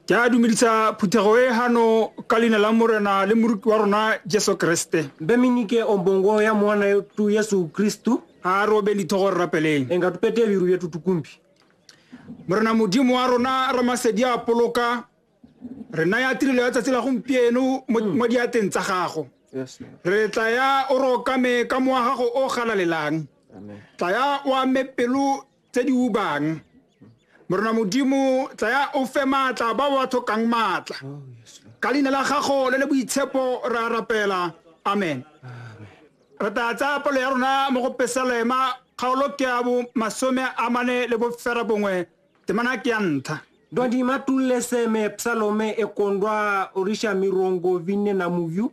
ke a dumedisa phuthego e gano ka leina la morena le moruti wa rona jesu kriste beminike ombongo ya mwana tu yesu kristu a re obeng dithogo re rapeleng e nga tupete biru yetu tukumbi morena modimo wa rona ramasedi a poloka re naya tirelo ya tsatsi la gompieno mo mm. diateng tsa gago re tla ya o rokame ka moa gago o galalelang tla ya o ame pelo tse di ubang morena modimo tsaya o fe maatla ba ba tlhokang maatla oh, ka leina la gago le le boitshepo re a rapela amen re tla tsaya palo ya rona mo go pesalema kgaolo ke ya bo masome a mane le bofera bongwe temana ke ya ntlha ndwandi matulle seme psalome ekondwa orisha mirongo vinne na muyu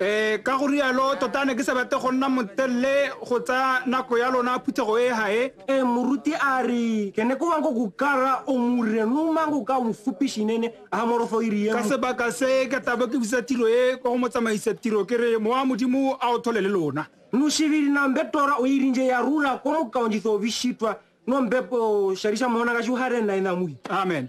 Ee, ka go rialo, tota ne ke sa batle go nna motelele go tsaya nako ya lona phuthego e gae. E muruti a ri, ke ne ko wanko ku kara o mure nu mango ka mu fupishi nene a morofo iri ye. Ka sebaka se, ke tla bo ke busa tiro e kwa go motsamaisa tiro ke re, Mowa wa Modimo a o thole le lona. Nu shiviri na mbe tora o irinje ya rula ko mo kaonjitho o bishitwa no mbe po sharisha mona ka shuhare na ina mui. Amen.